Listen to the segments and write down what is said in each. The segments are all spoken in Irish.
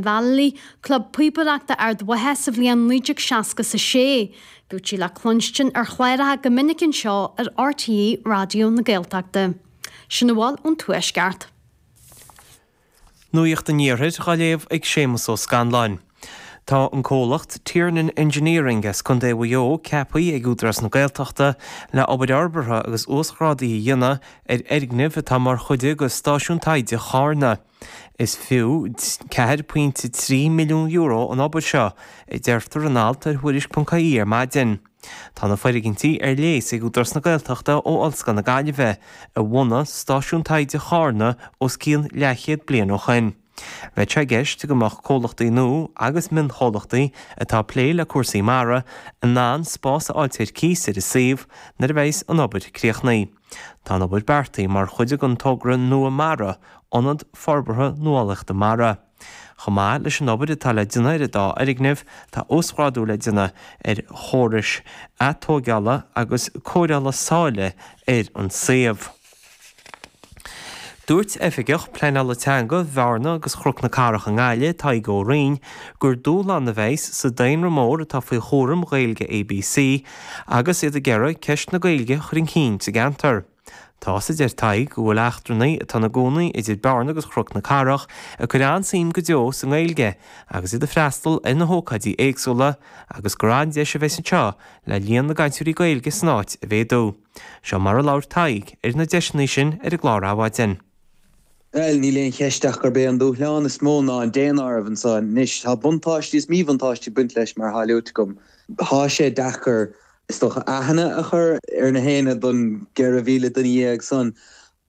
Vallely, club píobaireachta Ard Mhacha sa bhliain 1966. Bhíodh sí le cluinstin ar chláracha go minic anseo ar RTÉ Raidió na Gaeltachta. Sin a bhfuil ón Tuaisceart. Nuacht an Iarthair dha léamh ag Séamus Ó Scanláin. Tá an comhlacht Tiernan Engineering as Co. Mhaigh Eo ceapaí ag Údarás na Gaeltachta le obair fhorbartha agus uasghrádaithe dhéanamh ar fhoirgneamh atá mar chuid de Stáisiún Taighde Chárna. Is fiú €4.3 milliún an obair seo, a deirtear in alt ar Tuairisc.ie ar maidin. Tá na foirgintí ar léas ag Údarás na Gaeltachta ó Ollscoil na Gaillimhe, a bhunaigh Stáisiún Taighde Charna os cionn leathchéad bliain ó shoin. Beidh sé i gceist go mbeadh comhlachtaí nua agus mionchomhlachtaí atá ag plé le cúrsaí mara in ann spás a fháilt ar cíos ar an suíomh nuair a bheidh an obair críochnaithe. Tá an obair beartaí mar chuid den togra Nua na Mara, Ionad Forbartha Nuálaíochta Mara. Chomh maith leis an obair atá le déanamh ar an dá fhoirgneamh, tá uasghrádú le déanamh ar chórais astógála agus cóireála sáile ar an suíomh. Dúirt Oifigeach Pleanála Teanga Bhearna agus Chnoc na Cathrach i nGaillimh, Tadhg Ó Riain, gur dúshlán a bheidh sa daonra mór atá faoi chúram Ghaeilge ABC, Agus iad ag iarraidh ceist na Gaeilge a chur un cinn sa gceantar, cé is go ndeir Tadhg go bhfuil eachtrannaigh atá ina gcónaí idir Bearna agus Chnoc na Cathrach ag cur an-suim go deo sa nGaeilge agus iad ag freastal ar na hócáidí éagsúla agus gur an-deis a bheas anseo le líon na gcainteoirí Gaeilge san áit a mhéadú. Seo mar a labhair Tadhg ar na deiseanna sin ar an gclár Adhmhaidin. Bhuel, níl aon cheist ach gurb é an dúshlán is mó ná an daonáireamh anseo anois. Tá buntáistí is míbhuntáistí ag baint leis mar atá luaite agam. Tá sé deacair is dócha aithne a chur ar gach éinne don gceithre mhíle duine dhéag san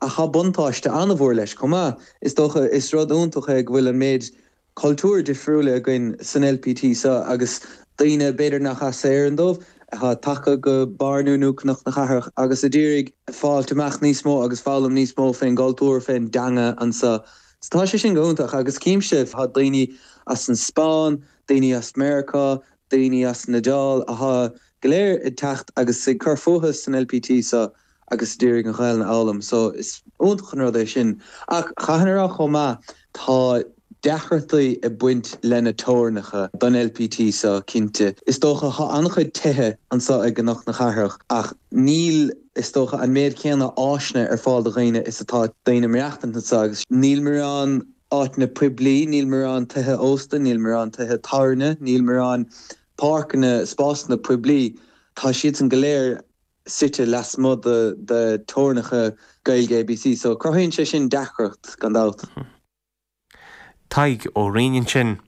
ach tá buntáiste an-mhór leis chomh maith. Is dócha is rud iontach é go bhfuil an méid cultúir difriúla againn san LPT seo agus daoine b'fhéidir nach as Éirinn dóibh atá tagtha go Bearna nó Cnoc na Cathrach agus ag iarraidh fáilt amach níos mó agus foghlaim níos mó fén gcultúr, fén dteanga anso. So tá sé sin go hiontach agus chímse tá daoine as an Spáinn, daoine as Meiriceá, daoine as an Iodáil atá go léir ag teacht agus ag cur fúthu san LPT seo. agus d'iarraidh an Ghaelainn a fhoghlaim so is iontach an rud é sin ach chaithfinn a rá chomh maith tá deacrachtaí ag baint leis na teorainneacha don LPT so cinnte is dócha tá an-chuid tithe anso i gCnoc na Cathrach ach níl is dócha an méid céanna áiseanna ar fáil do dhaoine is atá daoine maireachtaint anso agus níl mórán áiteanna poiblí níl mórán tithe ósta níl mórán tithe tábhairne níl mórán páirceanna spásanna poiblí tá siadsan go léir suite lasmuigh de theorainneacha Gaeltachta, ABC, so cruthaíonn sé sin deacracht, gan dabht. Tadhg Ó Rinn ansin.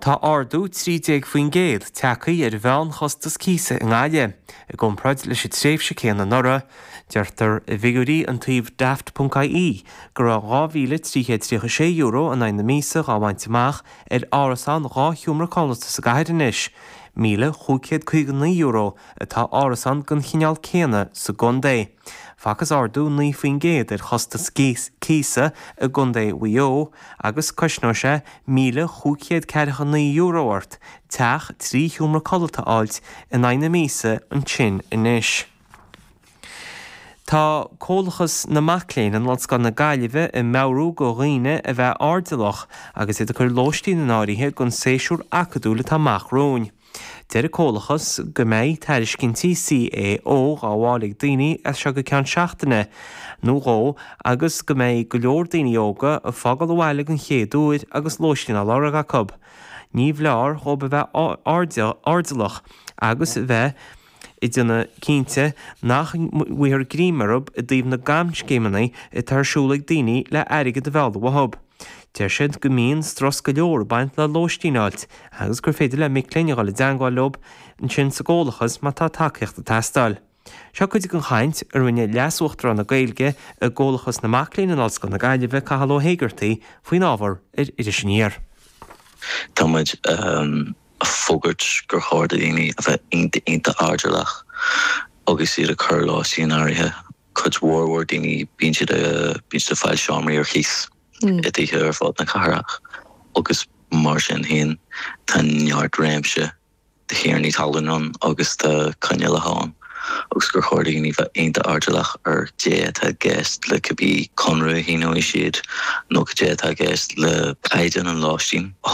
Tá ardú 13% tagtha ar mheánchostas cíosa i nGaillimh i gcomparáid leis an tréimhse céanna anuraidh. Deirtear i bhfigiúirí an tsuímh Daft.ie go raibh €2,336 in aghaidh na míosa dhá bhaint amach ar árasán dhá sheomra cónaithe sa gcathair anois, €1,559 atá árasán den chineál céanna sa gcontae. Facthas ardú 9 faoin gcéad ar chostas cíosa i gcontae Mhaigh Eo agus cosnóidh sé míle cúig chéad ceathracha a naoi euro ort teach trí sheomra codlata a fháilt in aghaidh na míosa ansin anois. Tá Comhlachas na Mac Léinn in Ollscoil na Gaillimhe ag meabhrú do dhaoine a bheith airdeallach agus iad ag cur lóistín in áirithe don séasúr acadúil atá amach romhainn. Deir an comhlachas go mbeidh tairiscintí CAO dhá bhfáil ag daoine as seo go ceann seachtaine nó dhó agus go mbeidh go leor daoine óga ag fágáil an bhaile den chéad uair agus lóistín á lorg acu. Ní foláir dhóibh a bheith airdeallach agus bheith ag déanamh cinnte nach bhfaightear greim orthub i dtaobh na gcamscéimeanna atá ar siúl ag daoine le airgead a mhealladh uathub. Deir siad go mbíonn strus go leor ag baint le lóistín a fháilt agus gur féidir le mic léinn a dhul i dteangmháil leob ansin sa gComhlachas má tá tacaíocht ag teastáil. Seo cuid den chaint a rinne Leas-Uachtarán na Gaeilge i gComhlachas na Mac Léinn in Ollscoil na Gaillimhe, Cathal Ó hÉigeartaigh, faoin ábhar ar Iris Aniar. Tá muid. ag fógairt gur chóir do dhaoine a bheith iontach iontach airdeallach agus iad ag cur lóistín in áirithe. Cuid mhór mhór daoine bíonn siad bíonn siad ag fáil seomraí ar chíos i dtithe ar fud na cathrach agus mar sin féin tá neart réimse de thiarnaí talún ann agus tá coinníollacha ann agus gur chóir do dhaoine bheith iontach airdeallach ar caidé atá i gceist le cibé conradh a shíneoidh siad nó caidé atá i gceist le caighdeán an lóistín.